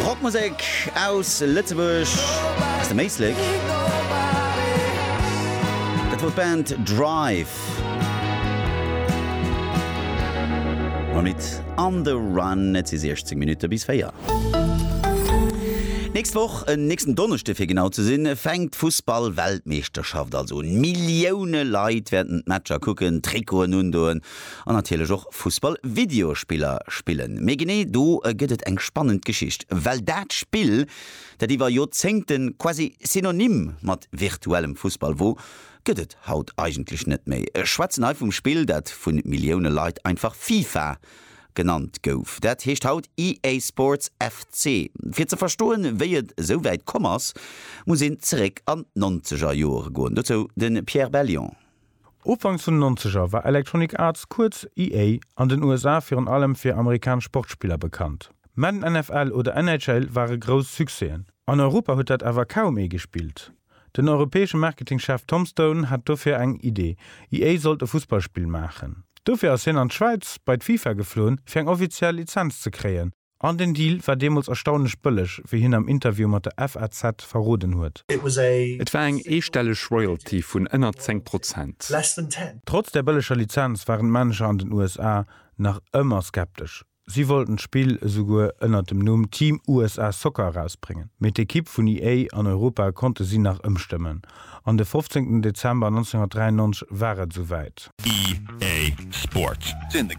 Rockmusek aus Lëtzebuerg, aus dem Éislek. Dat wor d'Band Drive mam Lidd On the Run. Et si 16 Minutte bis 4. D'nächst Woch, en nächsten Donneschde fir genau ze sinn, fänkt d'Fussball-Weltmeeschterschaft also un. Millioune Leit wäerten d'Matcher kucken, Trikoten undoen An natierlech och Fussball-Videospiller spillen. Mee genee do gëtt et eng spannend Geschicht. Well dat Spill, dat iwwer Joerzéngte quasi synonym mat virtuellem Fussball wor, gëtt et haut eigentlech net méi. Ech schwätzen hei vum Spill, dat vu Millioune Leit einfach FIFA genannt gouf. Dat heescht haut EA Sports FC. Fir ze verstoen, wéi et esou wäit komm ass, muss een zeréck an d'Nonzeger Jore goen. Dozou de Pierre Bellion. Ufanks vun den Nonzeger war Electronic Arts, kuerz EA, an den USA virun allem fir amerikanesch Sportspiller bekannt. Madden NFL oder NHL ware grouss Succèsen. An Europa huet dat awer kaum ee gespillt. Den europäesche Marketingchef Tom Stone hat dofir eng Idee, EA sollt e Fussballspill maachen. Dofir ass hien an d'Schwäiz bei d'FIFA geflunn, fir eng offiziell Lizenz ze kréien, An den Deal war deemools erstaunlech bëlleg, wéi hien am Interview mat der FAZ verroden huet. Et war eng eestelleg Royalty vun ënner 10 Prozent. Trotz der bëlleger Lizenz waren d'Manager an den USA nach ëmmer skeptesch. Si wollten d'Spill esouguer ënner dem Numm Team USA Soccer erausbréngen, mee d'Ekipp vun EA an Europa konnte si nach ëmstëmmen. An de fofzéngten Dezember 1993 war et esouwäit. EA Sport.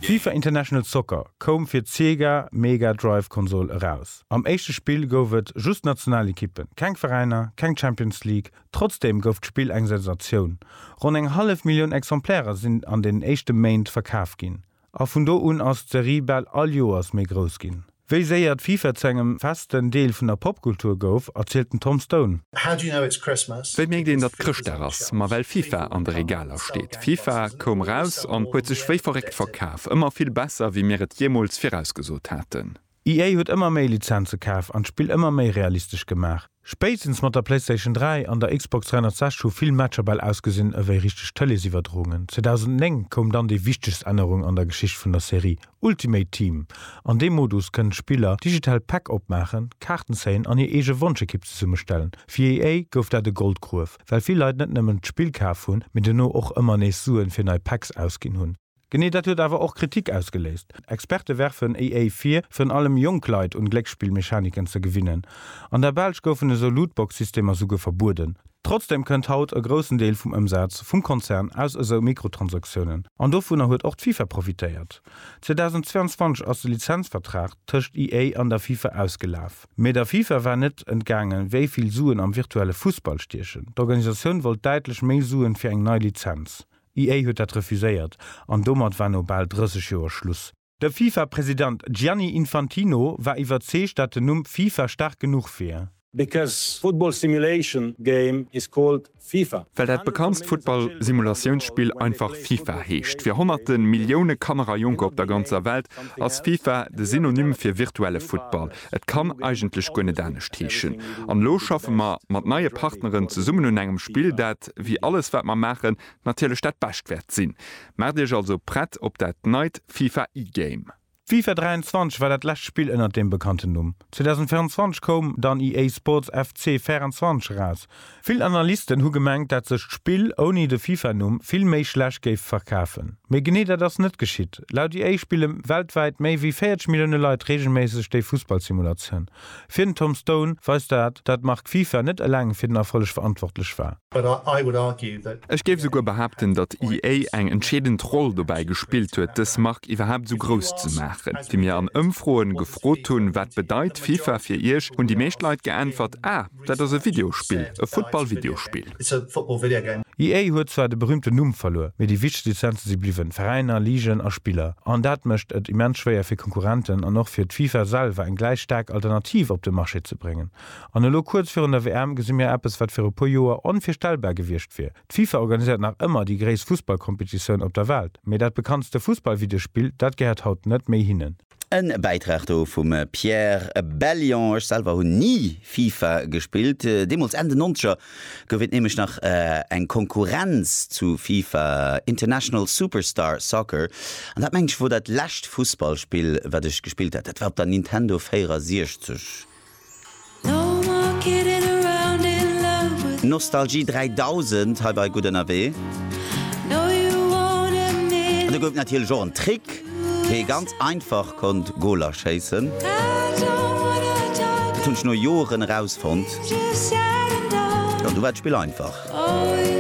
FIFA International Soccer koum fir d'Sega Mega Drive Konsol eraus. Am éischte Spill gouf et just Nationalekippen, keng Veräiner, keng Champions League. Trotzdeem gouf d'Spill eng Sensatioun. Ronn eng hallef Millioun Exemplairer sinn an den éischte Méint verkaf ginn. A vun do un ass d'Serie bal all Joers méi grouss ginn. Wéi séier d'FIFA zu engem festen Deel vun der Popkultur gouf, erzielt den Tom Stone. Wéi mierkt een, datt Chrëschtdag ass? Ma well FIFA an de Regaler steet. FIFA koum eraus an huet sech wéi verréckt verkaf. Ëmmer vill besser, wéi mir et jeemools virausgesot haten. EA huet ëmmer méi Lizenze kaf an d'Spill ëmmer méi realistesch gemaach. Spéitstens mat der PlayStation 3 an der Xbox 360 hu vill Matcher bal ausgesinn ewéi richteg Tëleesiwwerdroungen. 2009 koum dann déi wichtegst Ännerung an der Geschicht vun der Serie, Ultimate Team. An deem Modus kënnen d'Spiller digital Päck opmaachen, Kaarten zéien an hir eege Wonschekipp zesummestellen. Fir EA gouf dat e Goldgruef, well vill Leit net nëmmen d'Spill kaf hunn, mee dono och ëmmer nees Suen fir nei Packs ausginn hunn. Genee dat huet awer och Kritik ausgeléist. Experte werfen EA vir, virun allem jonk Leit un Glécksspillmechaniken ze gewinnen. An der Belsch goufen esou Lootbox-Systemer souguer verbueden. Trotzdem kënnt haut e groussen Deel vum Ëmsaz vum Konzern aus esou Mikrotransaktiounen, an dovunner huet och d'FIFA profitéiert. 2022 ass de Lizenzvertrag tëscht EA an der FIFA ausgelaf. Mee der FIFA war net entgaangen, wéi vill Suen am virtuelle Fussball stiechen. D'Organisatioun wollt däitlech méi Suen fir eng nei Lizenz. D'IA huet dat refuséiert an domat war no bal 30 Joer Schluss. De FIFA-President Gianni Infantino war iwwerzeegt, dat den Numm FIFA staark genuch wier. Because football simulation game is called FIFA. Well dat bekanntst Futtball-Simulatiounspill einfach FIFA heescht. Fir honnerte Millioune Kanner a Jonker op der ganzer Welt ass FIFA de Synonym fir virtuelle Futtball. Et kann eigentlech guer net anescht heeschen. An elo schaffe mer mat neie Partneren zesummen un engem Spill, dat, wéi alles wat mer maachen, natierlech dat Bescht wäert sinn. Maacht Iech also prett op dat neit FIFA E-Game. D'FIFA 23 war dat lescht Spill ënnert deem bekannten Numm. 2024 koum dann EA Sports FC 24 eraus. Vill Analysten hu gemengt, dat sech d'Spill ouni de Fifa-Numm vill méi schlecht géif verkafen. Mee genee dat ass net geschitt. Laut EA spille weltwäit méi wéi 40 Millioune Leit reegelméisseg déi Fussballsimulatioun. Fir den Tom Stone weist dat, dat d'Mark Fifa net eleng fir den Erfolleg verantwortlech war. Ech géif esouguer behaapten, datt EA eng entscheedend Roll dobäi gespillt huet, dës Mark iwwerhaapt esou grouss ze maachen. Wéi mir an Ëmfroen gefrot hunn, wat bedeit Fifa fir iech, hunn déi meescht Leit geäntwert, Ah! Dat ass e Videospill, e Football-Videospill. EA huet zwar de berüümten Numm verluer, mee déi wichtegst Lizenze si bliwwen, Veräiner, Ligen a Spiller. An dat mécht et immens schwéier fir Konkurrenten an och fir d'FIFA selwer eng gläich staark Alternativ op de Marché ze bréngen. An elo kuerz virun der WM gesi mir eppes, wat viru puer Joer onvirstellbar gewiescht wier. D'FIFA organiséiert nach ëmmer déi gréisst Fussballkompetitioun op der Welt, mee dat bekanntste Fussballvideospill, dat gehéiert haut net méi hinnen. E Bäitrag do vum Pierre Bellion. Ech selwer hunn ni FIFA gespillt. Deemools, Enn den Nonzeger, gouf et nämlech nach eng Konkurrenz zu FIFA, International Superstar Soccer. An dat, meng ech, wor dat lescht Fussballspill, wat ech gespillt hat. Dat war op der Nintendo 64. Nostalgie 3000 hei bei Gutt Ënnerwee. An do gouf et natierlech och en Trick, wéi ee ganz einfach konnt Goler schéissen. Dat hunn ech no Joren erausfonnt. An du war d'Spill einfach.